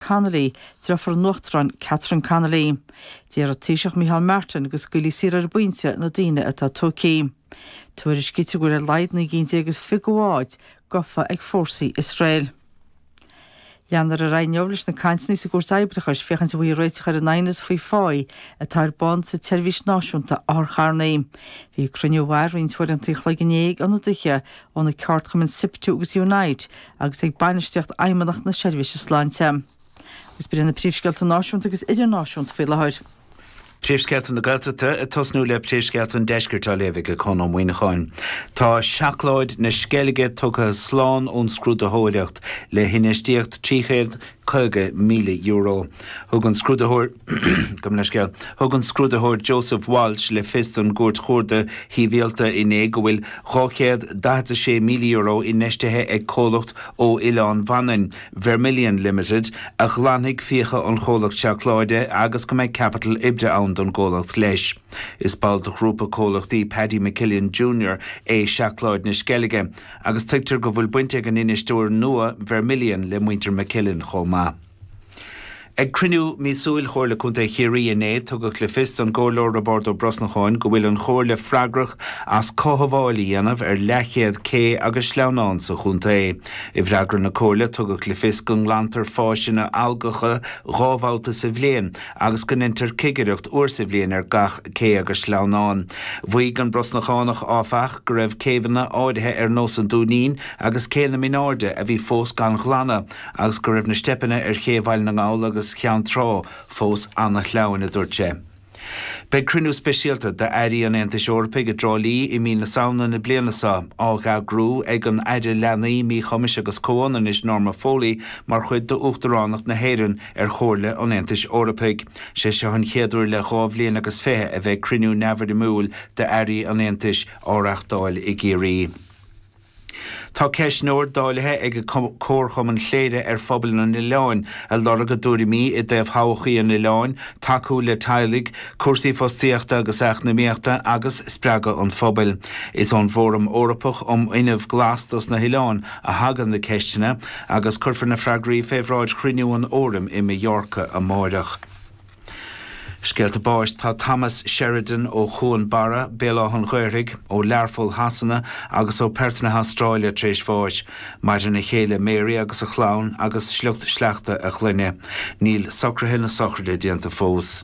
Connolly, Deirfiúr an Uachtaráin Catherine Connolly. D'iarr an Taoiseach Micheál Martin go scaoilfí saor ar an bpointe na daoine atá tógtha. Tuairiscítear go bhfuil ar a laghad 39 de bháid gafa ag fórsaí Iosrael. Leanfar ar aghaidh inniu leis na cainteanna sa gCúirt Oibreachais féachaint an bhfaighfí réiteach ar an aighneas faoi phá atá ar bun sa tseirbhís náisiúnta otharcharrannaí. Bhí cruinniú a mhair roinnt uaireanta an chloig inné ag ionadaithe ó na ceardchumainn Siptu agus Unite agus ag bainistíocht Fheidhmeannacht na Seirbhíse Sláinte. Agus b'in na príomhscéalta náisiúnta agus idirnáisiúnta faoi láthair. Príomhscéalta na Gaeltachta, ag tosnú le príomhscéalta an Deiscirt á léamh ag Conn Ó Muíneacháin. Tá seacláid na Sceilge tugtha slán ón scrúdaitheoireacht le hinfheistíocht €350,000. Thug an scrúdaitheoir. Gabh mo leithscéal. Thug an scrúdaitheoir Joseph Walsh le fios don gCúirt Chuarda Shibhialta inné go bhfuil €246,000 infheistithe ag comhlacht ó Oileán Mhanann, Vermilion Limited, a ghlanfaidh fiacha an chomhlacht seacláide agus go mbeidh caipiteal oibre ann don gcomhlacht leis. Is ball de ghrúpa comhlachtaí Paddy McKillen Junior é Seacláid na Sceilge agus tuigtear go bhfuil baint ag an infheisteoir nua, Vermilion, le muintir McKillen chomh maith. Ag cruinniú míosúil Chomhairle Contae Chiarraí inné, tugadh le fios don gComhairleoir Roibeárd Ó Brosnacháin go bhfuil an Chomhairle freagrach as cothabháil a dhéanamh ar leathchéad cé agus sleamhnán sa chontae. I bhfreagra na Comhairle tugadh le fios go nglantar fásanna algacha dhá bhabhta sa bhliain agus go ndeintear cigireacht uair sa bhliain ar gach cé agus sleamhnán. Mhaígh an Brosnachánach, áfach, go raibh céibheanna áirithe ar nós an Dúinín agus Cé na Mináirde a bhí fós gan ghlanadh, agus go raibh na steipeanna ar ché Bhaile na nGall agus Cheann Trá fós an-shleamhain, a dúirt sé. Beidh cruinniú speisialta d'Airí an Aontais Eorpaigh i dTrá Lí i mí na Samhna na bliana seo, á eagrú ag an Aire Leanaí, Míchumais agus Comhionannais Norma Foley mar chuid d'Uachtaránacht na hÉireann ar Chomhairle an Aontais Eorpaigh. Sé seo an chéad uair le dhá bhliain agus fiche a bheidh cruinniú neamhfhoirmiúil d'Airí an Aontais á reáchtáil i gCiarraí. Tá ceistneoir dáilithe ag Comharchumann Chléire ar phobal an oileáin ag lorg a dtuairimí i dtaobh thodhchaí an oileáin, tacú le teaghlaigh, cúrsaí fostaíochta agus eacnamaíochta agus spreagadh an phobail. Is ón bhFóram Eorpach um Fhuinneamh Glas dos na hOileáin a thagann na ceisteanna, agus cuirfear na freagraí fé bhráid chruinniú an Fhóraim i Mallorca amáireach. Scéalta báis Tá Thomas Sheridan ó Chuan Barra, Béal Átha'n Ghaorthaidh, ó Learpholl Shasana agus ó Perth na hAstráile tar éis bháis. Maireann a chéile Mary agus a chlann agus sliocht sleachta a chlainne. Níl socruithe na sochraide déanta fós.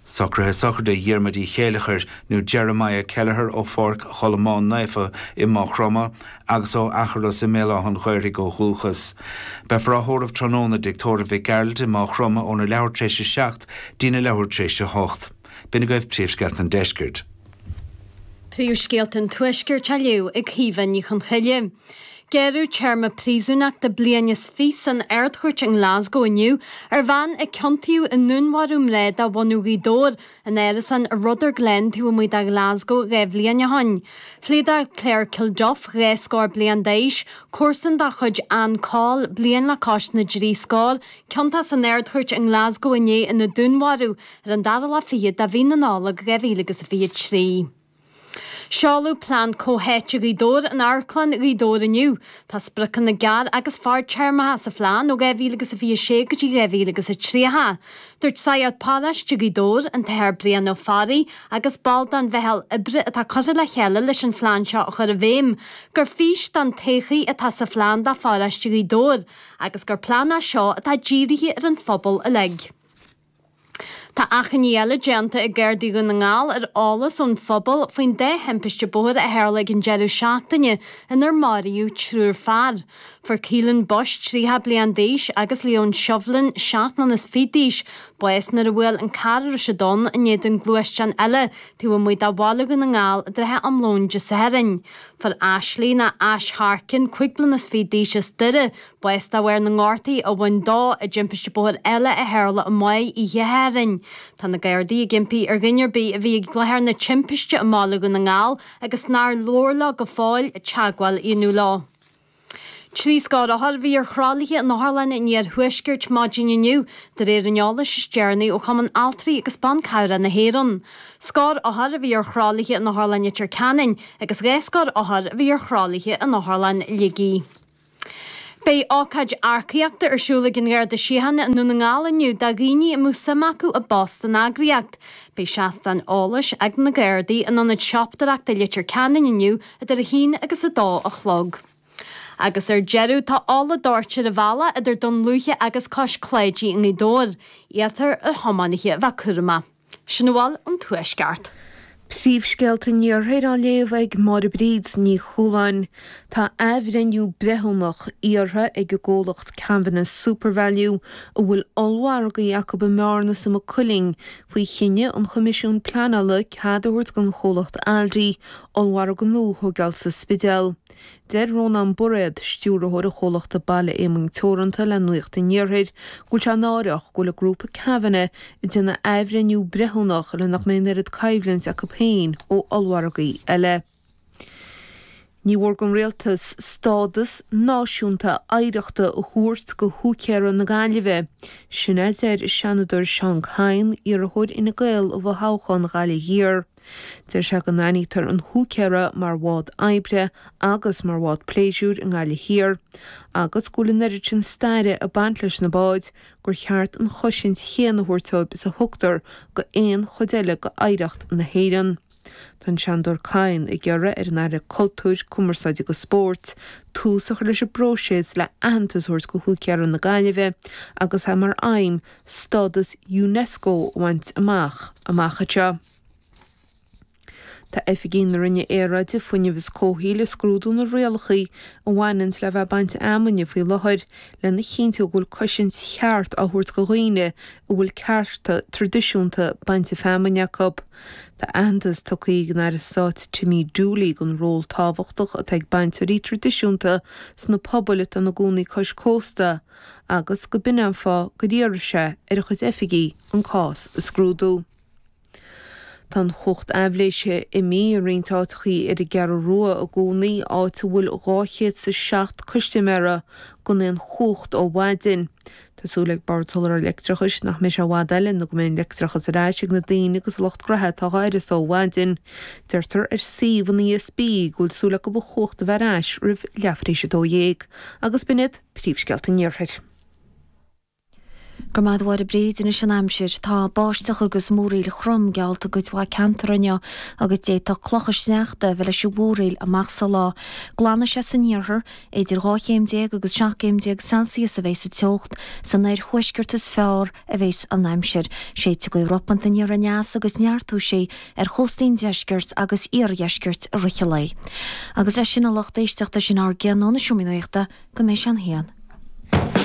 Socruithe Sochraide Dhiarmuid Uí Chéileachair nó Jeremiah Kelleher ó Pháirc Cholmán Naofa i Maigh Chromtha, agus ó Athros i mBéal Átha'n Ghaorthaidh ó dhúchas. Beifear á thórramh tráthnóna, i dTigh Tórraimh Mhic Gearailt i Máigh Chromtha óna leathuair tar éis a seacht dtína leathuair tar éis a hocht. B'in agaibh Príomhscéalta an Deiscirt. Príomhscéalta an Tuaiscirt á léamh ag Caoimhe Ní Chonchoille. Gearradh téarma príosúnachta bliain is fiche san Ardchúirt i nGlasgow inniu ar bhean a ciontaíodh i ndúnmharú mná de bhunadh Ghaoth Dobhair ina hárasán i Rutherglen taobh amuigh de Ghlasgow dhá bhliain ó shoin, phléadáil Claire Kilduff, dhá scór bliain d'aois, comharsan dá chuid Ann Coll, bliain le cois na dtrí scór, ciontach san Ardchúirt i nGlasgow inné ina dúnmharú ar an dara lá fichead de mhí na Nollag dhá mhíle agus a fiche trí. Seoladh Plean Comhtháite Ghaoth Dobhair in Amharclann Ghaoth Dobhair inniu. Tá spriocanna gearr agus fadtéarmacha sa phlean ó 2026 go dtí 2030. Dúirt Sagart Paróiste Ghaoth Dobhair, an tAthair Brian Ó Fearraigh agus ball den mheitheal oibre atá curtha le chéile leis an phlean seo a chur i bhfeidhm, gur fís don todhchaí atá sa phlean do Pharóiste Ghaoth Dobhair agus gur plean é seo atá dírithe ar an phobal uilig. Tá achainí eile déanta ag Gardaí Dhún na nGall ar eolas ón phobal faoin dá thimpiste bóthair a tharla ag an deireadh seachtaine inar máraíodh triúr fear. Fuair Keelan Bush, 30 bliain d'aois, agus Leon Shovlin, 7 mbliana is fiche d'aois, bás nuair a bhuail an carr a raibh siad ann in éadan gluaisteán eile taobh amuigh de Bhaile Dhún na nGall i dtrátha am lóin Dé Sathairn. Fuair Ashley, nó Ash Harkin, 5 bliana is fiche d'aois, as Doire, bás de bharr na ngortaithe a bhain dó i dtimpiste bóthair eile a tharla oíche Shathairn. Tá na Gardaí ag impí ar dhuine ar bith a bhí ag láthair na timpiste i mBaile Dhún na nGall agus nár labhair leo go fóill teagmháil a dhéanamh leo. Trí scór othar a bhí ar thralaithe an otharláin an iarthuaiscirt maidin inniu, de réir an eolais is deireanaí ó Chumann Altraí agus Ban Cabhrach na hÉireann. Scór othar a bhí ar thralaithe in Otharlann Leitir Ceanainn agus dhá scór othar a bhí ar thralaithe in Otharlann Shligigh. Beidh ócáid earcaíochta ar siúl ag an Gharda Síochána i nDún na nGall inniu do dhaoine a mbeadh suim acu i bpost san eagraíocht. Beidh seastáin eolais ag na Gardaí in ionad siopadóireachta Leitir Ceanainn inniu idir 1 agus 2 a chlog. Agus ar deireadh tá ola doirte ar an bhealach idir Dún Lúiche agus Cois Cláidí i nGaoth Dobhair. Iarrtar ar thiománaithe a bheith cúramach. Sin a bhfuil ón Tuaisceart. Príomhscéalta an Iarthair á léamh ag Máire Bríd Ní Chualáin. Tá athbhreithniú breithiúnach iarrtha ag an gcomhlacht Kavanagh Supervalu, a bhfuil ollmhargaí acu i mBearna is i Maigh Cuilinn, faoi chinneadh an Choimisiúin Pleanála cead a thabhairt don chomhlacht Aldi ollmhargadh nua a thógáil sa Spidéal. Deir Rónán Bairéid, Stiúrthóir an chomhlachta Baile Éamoinn Teoranta le Nuacht an Iarthair, go bhfuil sé náireach go bhfuil an grúpa Kavanagh ag déanamh athbhreithniú breithiúnach, le nach mbeidh an oiread coimhlinte acu féin ó ollmhargaí eile. Ní mhór don Rialtas stádas náisiúnta oidhreachta a thabhairt go Húicéara na Gaillimhe. Sin a deir an Seanadóir Seán Kyne, iarrthóir Fhine Gael i bhfothoghchán Ghaillimh Thiar. Deir sé go n-aithnítear an húicéir mar mhodh oibre agus mar mhodh pléisiúir i nGaillimh Thiar, agus go bhfuil an oiread sin staire ag baint leis na báid gur cheart an chosaint chéanna a thabhairt dóibh is a thugtar go aon chuid eile go oidhreacht na hÉireann. Tá an Seanadóir Kyne ag iarraidh ar an Aire Cultúir, Cumarsáide agus Spóirt tús a chur leis an bpróiseas le haitheantas a thabhairt go húicéara na Gaillimhe agus é mar aidhm stádas Unesco a bhaint amach amach anseo. Tá oifigigh na Roinne Aeráide, Fuinnimh agus Comhshaoil ag scrúdú na rialachaí a bhaineanns le bheith ag baint fheamainne faoi láthair lena chinntiú go bhfuil cosaint cheart á thabhairt go dhaoine a bhfuil cearta traidisiúnta bainte feamainne acu. Tá aitheantas tugtha ag an Aire Stáit Timmy Dooley don ról tábhachtach atá ag bainteoirí traidisiúnta sna pobail atá ina gcónaí cois cósta, agus go b'in an fáth gur iarr sé ar a chuid oifigí an cás a scrúdú. Tá an chumhacht aibhléise imí i roinnt áiteachaí ar an gCeathrú Rua i gcónaí, áit a bhfuil dhá chéad 's a seacht custaiméara gan aon chumhacht ó mhaidin. Tá súil ag Bord Soláthair Leictreachais nach mbeidh sé i bhfad eile nó go mbeidh an leictreachas ar ais ag na daoine agus an lucht gnaithe atá dhá uireasa ó mhaidin. Deirtear ar suíomh an ESB go bhfuil súil acu an chumhacht a bheith ar ais roimh leathuair tar éis a dó dhéag, agus b'in iad. príomhscéalta an Iarthair. Go raibh maith agat a Mháire Bríd, anois an aimsir. Tá báisteach agus múraíl throm geallta i gcuid mhaith ceantair inniu agus d'fhéadfadh clocha sneachta a bheith leis an mhúraíl amach sa lá. Glanfaidh sé san iarthar. Idir dhá chéim déag agus seacht gcéim déag Celsius a bheidh sa teocht. San oirthuaisceart is fearr. a bheas an aimsir. Séidfidh gaoth ropánta aniar aneas agus neartóidh sí ar chóstaí an deiscirt agus iardheiscirt i rith a lae. Agus leis sin a lucht éisteachta sin a gcion ón seomra nuachta go mbeidh sé a haon.